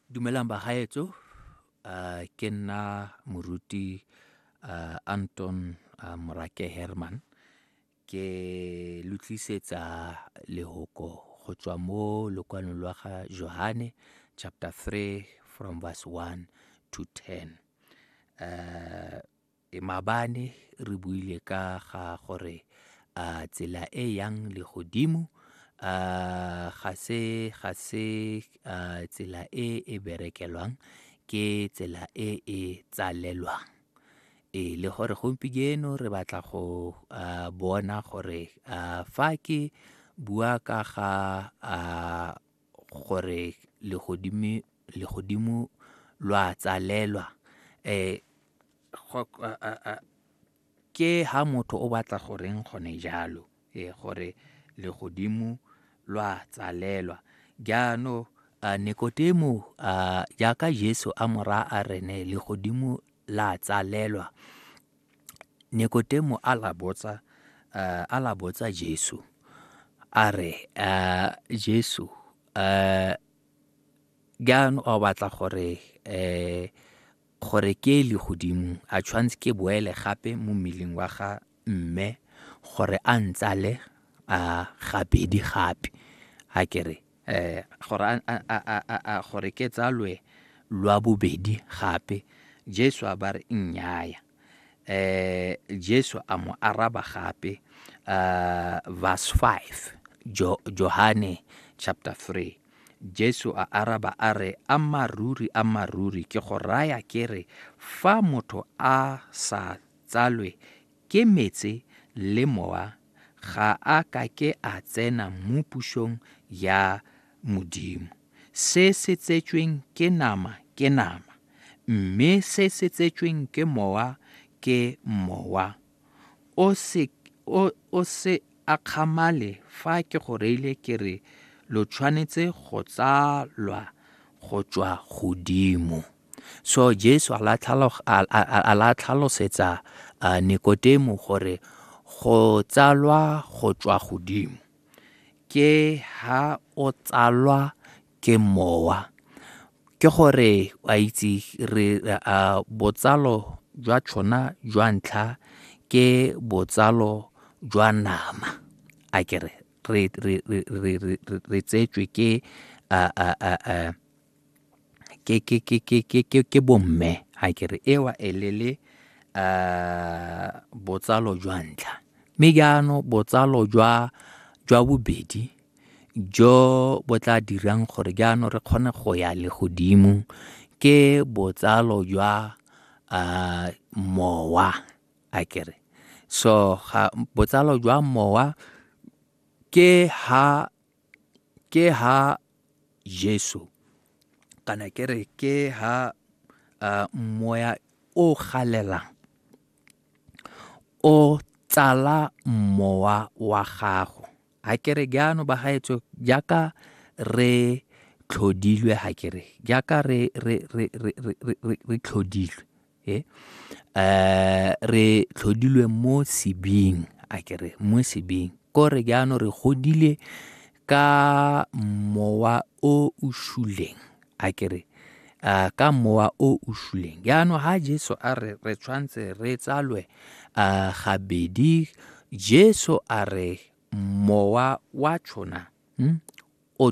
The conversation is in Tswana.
dumelang bagaetso uh, ke nna moruti uh, anton uh, morake herman ke lo tlisetsa lehoko go tswa mo lokwalong lwa ga johane chapter 3 from verse 1 to 10 uh, E mabane re buile ka ga gore a tsela e yang le godimo a ga se ga se tsela e e berekelwang ke tsela e e tsalelwang e le gore gompieno re batla go bona gore fa ke bua ka ga gore legodimo lo a tsalelwa ke ha motho o batla goreng gone jalo e gore legodimo lo a tsalelwa jaanong a Nikodimo a jaaka Jesu a mora a rene legodimo la tsalelwa Nikodemo a la botsa uh, a la botsa Jesu a re uh, Jesu uh, jaanong o batla gore um gore ke le godimo a tshwanetse ke boele gape mo mmeleng wa ga mme gore a ntsale a gabedi gape a kere gore a gore ke tsalwe lwa bobedi gape jesu a ba re nnyaya um jesu a mo araba gape uh, verse 5 jo, johane chapter 3 jesu a araba a re a maruri a maruri ke go raya ke re fa motho a sa tsalwe Ke metse le mowa ga a ka ke a tsena mo pusong ya Modimo. Se se tsetsweng ke nama ke nama, mme se se tsetsweng ke mowa ke mowa. O se, o, o se akgamale fa ke go reile ke re lo tshwanetse go tsalwa go tswa godimo. So Jesu a la tlhalosetsa uh, Nikotemo gore go tsalwa go tswa godimo ke ha o tsalwa ke mowa ke gore a itse re uh, botsalo jwa tshona jwa ntlha ke botsalo jwa nama a kere re tsetswe ke uh, uh, uh, uh, ke ke ke ke ke ke ke bomme a ke re ewa e le le uh, botsalo jwa ntlha mme jaanong botsalo jwa jwa bobedi jo bo tla dirang gore jaanong re kgone go ya le godimo ke botsalo jwa uh, mowa a ke re so ga botsalo jwa mowa ke ha ke ha Jesu kana ke re ke ha uh, moya o galelang o tsala mowa wa gago ha ke re jaano ba gaetso jaaka re tlhodilwe ha ke re jaaka re, re, re, re, re, re, re tlhodilwe e um re tlhodilwe mo sebing a kere mo sebing kore jaanong re godile ka mowa o o shuleng a kere uh, ka mowa o o shuleng jaanong ga jesu a re re tshwanetse re tsalwe um gabedi jesu a re mowa wa tshona hmm? o